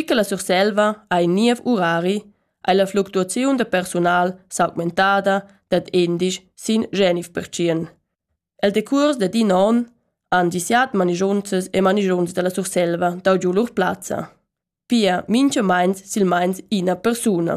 e che la Surselva ha in niev urari, ha la fluctuaziun da persunal s'augmentada dad endisch sin Genif pertschien. El decurs da din onn han disiat manigiunzas e manigiunzs dalla Surselva dau giu lur plazza. Pia mincha meins sil meins ina persuna.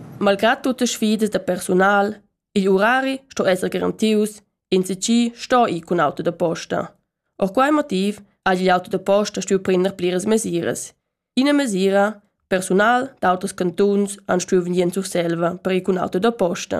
Malgrad tutte sfidas da persunal, igl urari sto esser garantius, ins chi sto ir cun auto da posta. Or quai motiv ha igl auto da posta stuiu prender pliras mesiras. Ina mesira, persunal d'autos cantuns han stuiu vegnir en Surselva per ir cun auto da posta.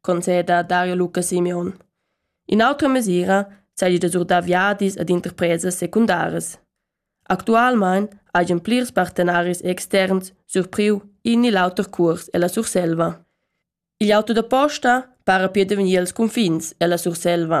conceda Dario Luca Simeon. In'autra mesira seigi da surdar viadis ad interpresas secundaras. Actualmein hagen plirs partenaris externs surpriu in ni l'auter cuors ella Surselva. Igl auto da posta para pir da vegnir als confins ella Surselva.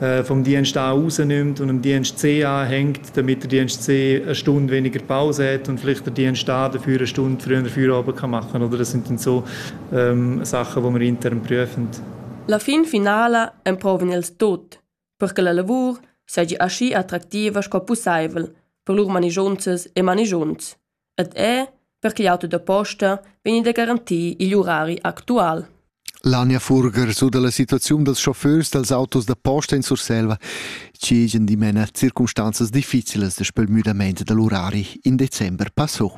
äh, vom Dienst A rausnimmt und am Dienst C anhängt, damit der Dienst C eine Stunde weniger Pause hat und vielleicht der Dienst A dafür eine Stunde früher Feierabend kann machen kann. Oder das sind dann so ähm, Sachen, die wir intern prüfen. La fin finala emprovan els tot, per che la lavur seigi aschi attractiva sco pusseivel per lur manigiunzas e manigiunts. ed er per ch'igl auto da posta vegni da garantir igl urari actual. L'Ania Furger su dalla situaziun dals chauffeurs dals autos da posta in Surselva, che gien dimena circumstanzas difficilas da spel müdament dall'urari in december passò.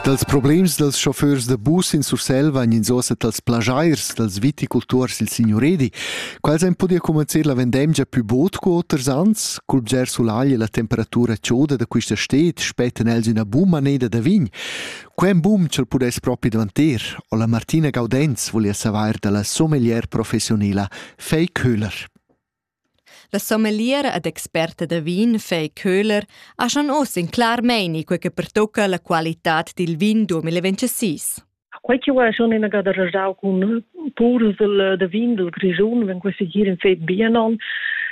Dals problems dals chauffeurs da bus in Surselva ein ins ossa dals plagiairs, dals viticulturs il signuredi. Quels ein podia comencer la vendemgia più bod cu oters ans, cul bger sulagl e la temperatura chioda da quista stet, spetten els ina bum maneda da vin. Quem bum ch'el pudess propi dvanter, o la Martina Gaudenz volia savair dalla sommelier professionila Fei Köhler. La sommeliera ed experta da vin Fay Köhler ha schon oz in clar meini quei che pertocca la qualitad dil vin 2026. Quei che ho schon inagada rajau cun purs da vin dal Grischun, wenn questi hier in Fed Bianon,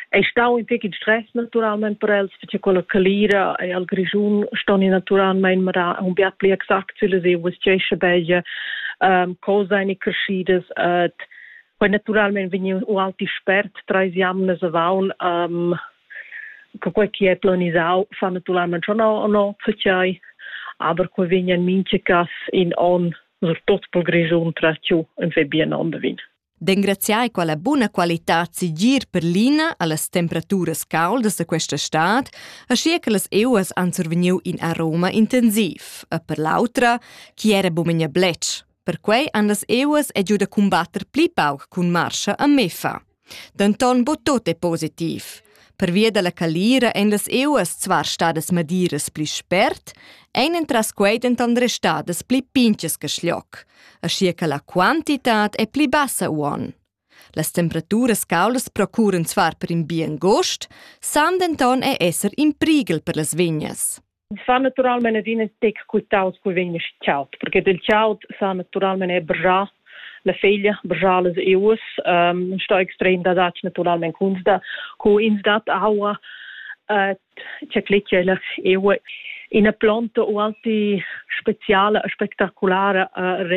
è stau in tec in stress naturalment per els, perché quella calira e al Grischun ston naturalmente un biat pli exact zu lese, was c'è sche belge, ähm, cosa eine crescidas et Poi naturalmein vegniu ualti spert treis jamnas avaun um, che quei che è planisau fa naturalmente schon o no fechai, aber quei vegnan minche cas in on surtot pel Grischun trattiu in fe bien ondavin. D'engraziar quella buna qualitad sigir per l'ina allas temperaturas caldas da questa stad, aschia che las euas han survegniu in aroma intensiv, e per l'autra, chi era bumegna blec, Perquei han las euas e giu da cumbatter pli pauc cun marscha a Mefa. Denton bo tot è positiv. Pervia dalla calira ein las euas zwar stadas madiras pli spert, ein entras quei denton restadas pli pintgas che schloc, aschia che la quantitad è pli bassa uon. Las temperaturas caulas procuran zwar per in bien gost, san denton è esser in priegel per las vignas. Ins fa naturalmein adina tec cul taut cul vegn aschi caud, perché del caud sa naturalmein er brgiar la feglia, brgiar las eus, ähm, sto extrem da datg naturalmein kunst da, cu ins dat aua, äh, cecleccia la eua. Ina plonta o alti speciala, spectaculara uh,